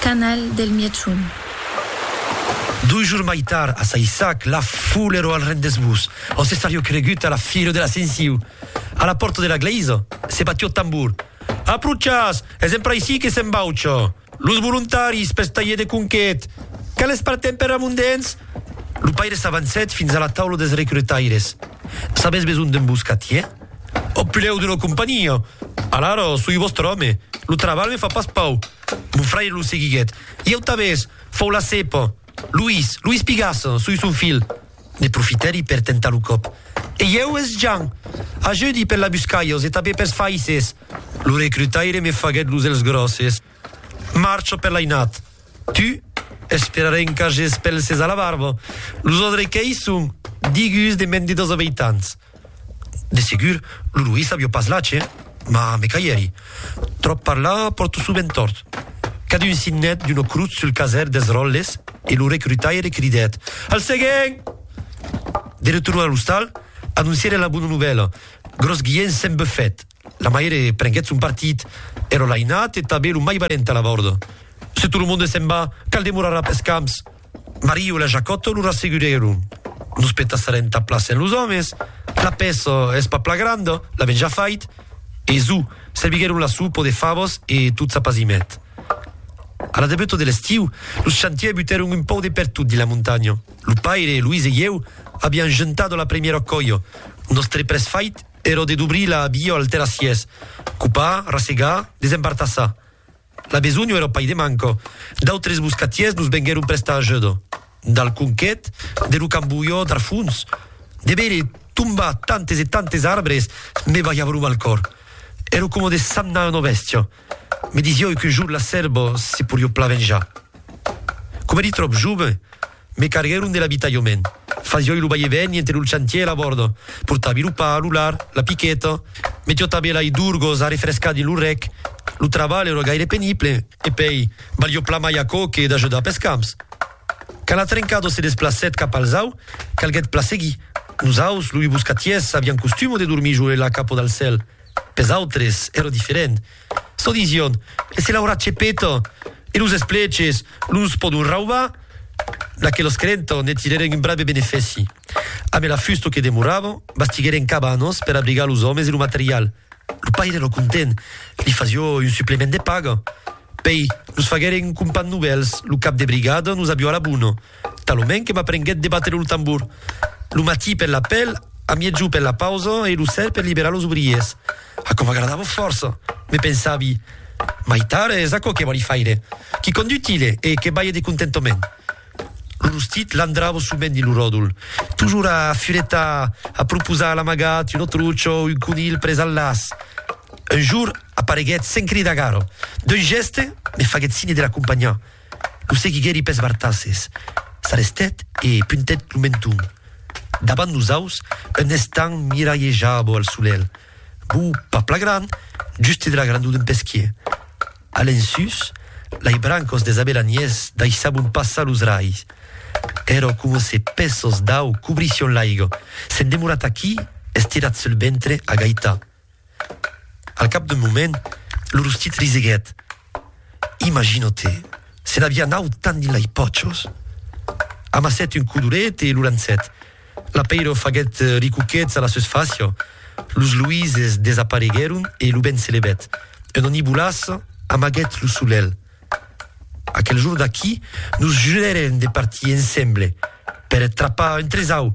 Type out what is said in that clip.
Canal del Mièchon. Dos jours mai tard, a Saissac, la foule ero al rendez-vous, ont se sarió cregut a la fira de l'Ascensiu. A la pòrta de la glèisa, se batió tambor. Approchatz! Es empraicí que s'embaucha! Los volontaris pels talhers de conquet! Quales partem per Ramondens? Lo paire s'avancèt fins a la taula dels recrutaires. Sabètz besonh d'un boscatier? Au preu d'una companhia! Alara, soi vòstre òme. Lo trabalh me fa pas pau. Mon fraire lo seguiguèt. I au tabès, fau la cèpa. Luís, Luís Pigasse, sui son filh. Ne profitèri per tentar lo còp. E ieu, es Jan. Ajudi per la buscalhos e tabé pers faisses. Lo recrutaire me faguèt los èlhs gròsses. Marcho per l'ainat. Tu, esperarè en cages pelses a la barba. Los odrequèis son digus de mèn de dos abeitants. De segur, lo Louis avió pas lache, mas me caièri. Tròp parlar pòrto sovent tòrt. Cadun signèt d'una crotz sul caser dels ròtles e lo recrutaire cridèt, Al seguent! De retorn a l'ostal, anoncièren la bona novèla, Gròs Guilhènh s'en bufèt. La maire prenguèt son partit, ero l'ainat e tanben lo mai valent a la vòrda. Se tot lo monde s'en va, cal demorar après camps! Mario e la Jacòto lo rassegurèron. Nos petassarem ta plaça en los òmes, la pèça es pas pla granda, l'avèm ja fait. E zo, serviguèron la sopa de favas e tot s'apazimèt. A la debuta de l'estiu, los chantiers butèron un pòu de pertot dins la montanha. Lo paire, Luis e ieu aviam juntat la primièra còia. Nòstre près fait èra de dobrir la via al terrassièrs, copar, rassegar, desembartassar. La besonh èra pas de manca. D'autres boscatièrs nos venguèron prestar ajuda. Dal conquet de lo cambolhor d'Arfons, de veire tombar tantes e tantes arbres me balhava lo mal còr. Èra coma de sagnar una bèstia. Me disiái qu'un jorn la sèrva se poriá plan venjar. Coma èri tròp jove, Me carguèron de l'abitalhament. Fasioi lo vai e vèni entre lo chantier e la bòrda. Portavi lo pa, lo lard, la piqueta. Me tiotavi lai d'urgos a refrescar dins lo rec. Lo trabalh èra gaire penible. E pei, valió plan mai aquò que d'ajudar pes camps. Quand la trencada se desplacèt cap al zau, calguèt plan seguir. Nos aus, loi boscatiers, avián costuma de dormir jo e la capa dal cèl. Pes autres èra diferent. Çò disión, se l'aurà chepeta e los espleches los pòdon raubar? N'aquelas creentans ne tirèren un brave benefèci. Amé la fusta que demoravan, bastiguèren cabanas per abrigar los òmes e lo material. Lo paire èra content, li fasió un suplement de paga. Pei, nos faguèren un compan novèls, lo cap de brigada nos avió a la bona. Talonment que m'aprenguèt de batre lo tambor. Lo matí per l'apèl, a miègjor per la pausa e lo ser per liberar los obriers. Aquò m'agradava fòrça. Me pensavi, Mai tard es aquò que vòli faire. Quicòm d'utile e que balhe de contentament. Lo rostit landrava sovent dins lo ròdol, tojor a furetar, a proposar l'amagat, un autruch o un conilh pres al laç. Un jorn apareguèt sens cridar gara. D'un gèste, me faguèt signe de l'acompanhar. Lo seguiguèri pes bartasses, s'arrestèt e puntèt lo menton davant los aus en estant miralhejabo al solelh. Bo, pas pla gran, juste de la grandor d'un pesquier. A l'ensús, lai brancos des abelaniers daissabon passar los rais. Ero coma se pèços d'au cobrission l'aiga. S'en demorat aquí, estirat sul ventre, a gaitar. Al cap d'un moment, lo rostit riseguèt. Imagino-te, se n'aviá naut tant dins lei pòchos! Amassèt un codoret e lo lançèt. L'apeiro faguèt ricuquets a la seus facia, los luises desapareguèron e lo vent se levèt. Un onibolàs amaguèt lo solelh. Aquel jorn d'aquí, nos jurèrem de partir ensemble per trapar un tresau!